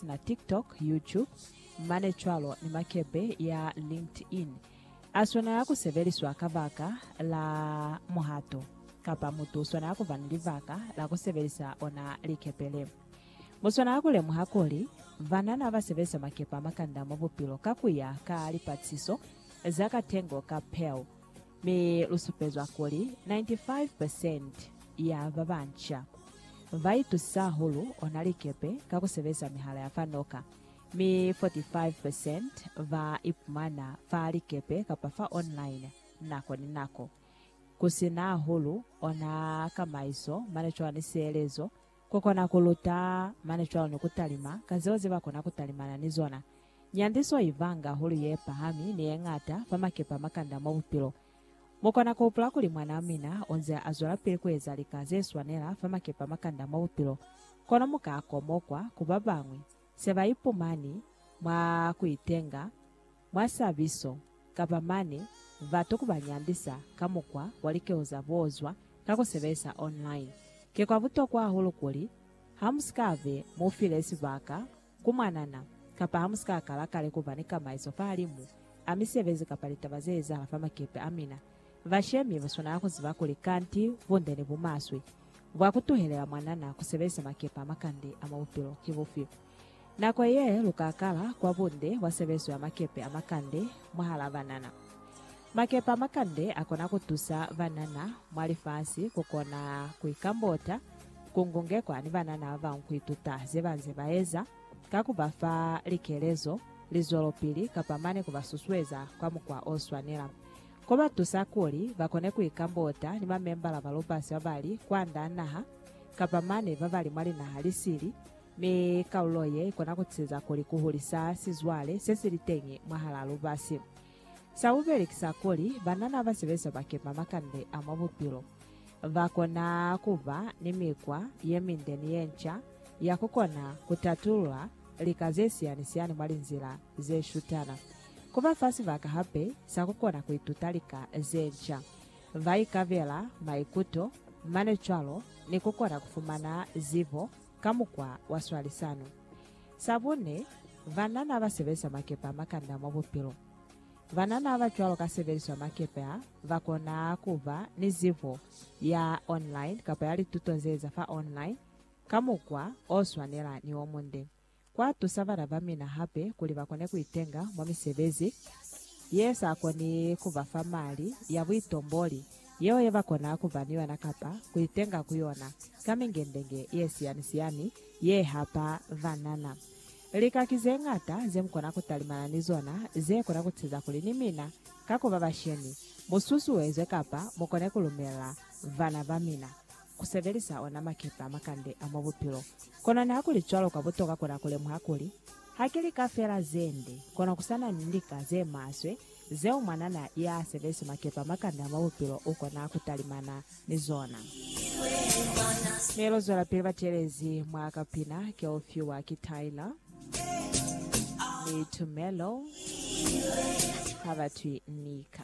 na TikTok, YouTube, mane cwalo ni makepe ya LinkedIn, a swanela ku sebeliswa kabaka la muhato, kapa mutu u swanela ku ba ni libaka la ku sebelisa ona likepe le. Mu swanela ku lemuha kuli, banana ba sebelisa makepe a makanda mwa bupilo ka ku ya ka lipatlisiso za katengo ka Pew. Mi lu supezwa kuli 95 percent ya ba banca ba itusa hahulu ona likepe ka ku sebeza mihala ya fa noka, mi 45 percent ba ipumana fa likepe kapa fa online nako ni nako. Ku si na hahulu ona kamaiso mane cwani sielezo Ku kona ku luta, mane cwalo ni ku talima ka zeo ze ba kona ku talimana ni zona. Nyandiso i vanga hulu ye pahami ni ye ñata fa makepe a makanda mwa bupilo. Mu kona ku hupula kuli mwanaa mina u nze a zwelapili ku eza lika ze swanela fa makepe a makanda mwa bupilo, kono mu ka komokwa ku ba bañwi se ba ipumani mwa ku itenga. Mwa sabiso, kapa mane, batu ku ba nyandisa ka mukwa wa likeo za boozwa ka ku sebelisa online. Ki kwa butokwa hahulu kuli ha mu si ka be mu file sibaka ku mwanana kapa ha mu si ka kala kale ku ba ni kamaiso fahalimu a misebezi kapa litaba ze ezahala fa makepe a mina. Bashemi ba swanela ku ziba kuli kanti bunde ni bumaswe bwa ku tuhelela mwanana ku sebelisa makepe a makande a mwa bupilo ki bufi. Nako ye lu ka kala kwa bunde kwa sebezo ya makepe a makande mwahal'a banana. Makepe a makande a kona ku tusa banana mwa lifasi ku kona ku ikambota, ku ngungekwa ni banana ba bañwi ku ituta ze ba nze ba eza, ka ku ba fa likelezo, lizwelopili, kapa mane ku ba susueza kwa mukwa o swanela. Ko ba tusa kuli ba kone ku ikambota ni mamembala ba lubasi ba ba li kwand'a naha kapa mane ba ba li mwa linaha li sili, Mi kalulo ye ikona kuciza kuli kuhulisa sizwale sesili-teñi mwahalaa lubasi. Sabubeli ki sa kuli, banana basebeza bakema makande a mwa bupilo bakona kuba ni mikwa yeminde ni yenca ya kukona kutatulula lika zesiyani-siyani mwa linzila zeshutana. Kuba fa sibaka hape sa kukona kuituta lika zenca, baikabela maikuto mane cwalo ni kukona kufumana zibo ka mukwa wa swalisano. Sa bune, banana ba sebelisa makepe a makanda mwa bupilo. Banana ba cwalo ka sebeliswa makepe a, ba kona ku ba ni zibo ya online kapa ya lituto ze eza fa online ka mukwa o swanela ni o munde. Kwa tusa bana ba mina hape kuli ba kone ku itenga mwa misebezi ye sa koni ku ba fa mali ya buitomboli yeo ye ba kona ku ba ni yona kapa ku itenga ku yona ka mingendenge ye siyani-siyani ye hapa banana. Lika ki ze ñata ze mu kona ku talimana ni zona ze kona ku teza kuli ni mina ka ku ba bashemi mu susuezwe kapa mu kone ku lumela bana ba mina ku sebelisa ona makepe a makande a mwa bupilo. Kono nihakulicwalo, kwa butoka kona kulemuha kuli, ha ki lika fela zende, kono kusana ni lika zemaswe zeo mwanana yaasebezi makepe a makande a mwa bupilo ukona kutalimana ni zona. Mi luzwelapili batelezi mwa kapina keufiwa ki Tyler ni Tumelo, habatwi Nika.